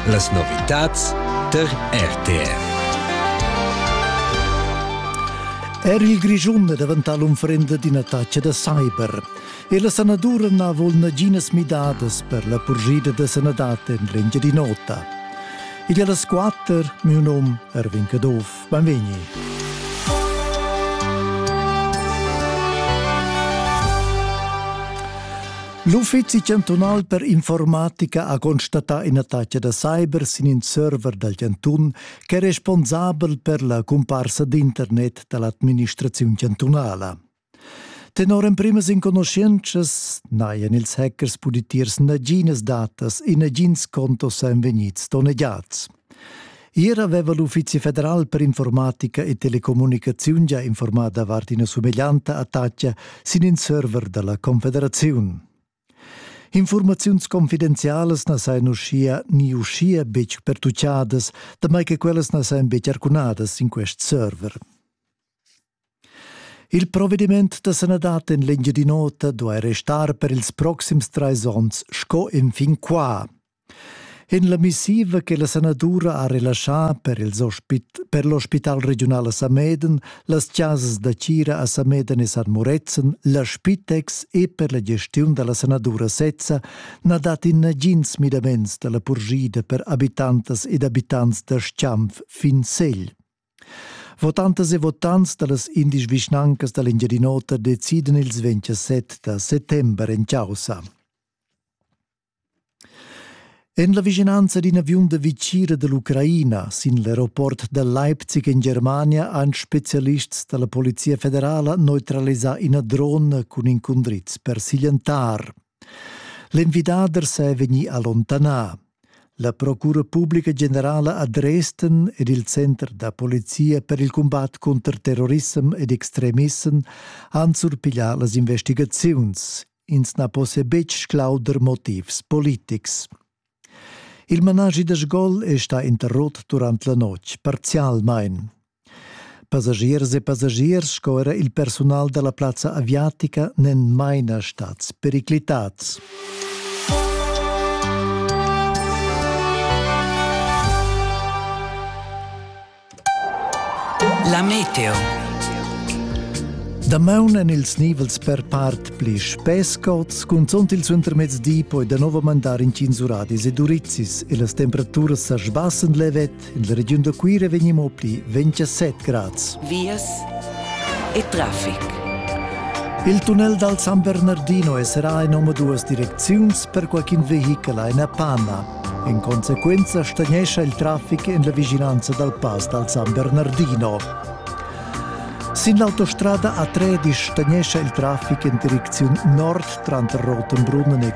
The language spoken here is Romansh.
Las novitads tar RTR. Er il Grischun è daventà l'unfrenda d'ina taccia da cyber. E la sanadura n'ha vul naginas midadas per la purgida da sanadad en l'Engiadin'Ota. Igl è las quatter, mio nom Erwin Caduff. Beinvegni. L'Uffizi chantunal per informatica ha constatà ina taglia da cyber sin in server dal chantun ch'è responsabel per la cumparsa d'internet da l'administraziun chantunala. Tenor emprimas enconuschientschas n'hajan ils hackers pudì tiers naginas datas e nagins contos èn vegnids donnegiads. Ier aveva l'Uffizi federal per informatica e telecommunicaziun già informato davart ina sumeglianta attacca sin in server dalla Confederaziun. Informaziuns confidenzialas na sajan uschia ni uschia betg pertuccadas, damai che quellas na sajan betg arcunadas sin quest server. Il provediment da sanadad en l'Engiadin'Ota duai restar per ils proxims trais onns sco enfin qua. En la missiva che la sanadura ha relaschà per, per l'ospital regiunal a Sameden, las chasas da tgira a Sameden e San Murezzan, la Spitex e per la gestiun da la sanadura sezza na dat in nagins midaments da la purgida per abitantas ed abitants da Schanf fin Segl. Votantas e votants dallas indisch vischnancas dall'Engiadin'Ota decidan ils 27 da settember en caussa. En la vischinanza d'in aviun da vicira dall'Ucraina sin l'aeroport da Leipzig en Germania han spezialists dalla Polizia federala neutralisà ina drona cun incundriz per siglientar. L'envidader sei vegni allontanà. La procura publica generala a Dresden ed il center da polizia per il combat contro terrorissem ed extremissem han surpiglià las investigaziuns. Ins na possa betg sclauder motivs politics. Il managi da sgol è stà interrotto durant la notg, parzialmain. Passagiers e passagiers sco era il persunal dalla plazza aviatica n'en maina stads periclitads. La meteo. Damaun en ils nivels per part pli spescots, cunzont il suentermezdi poi da nov mandar in tins uradis e durizzis e las temperaturas sa sbassen levet La regiun da Cuira vegni mo pli 27 grads. Vias e traffic. Il tunnel dal San Bernardino è serà in omaduas direcziuns per qualcun vehichel in Panna. In conseguenza stagnescha il traffic en la vigilanza dal pass dal San Bernardino. Sin l'autostrada A13 stagnescha il traffic in direcziun nord tranter Rotenbrunnen e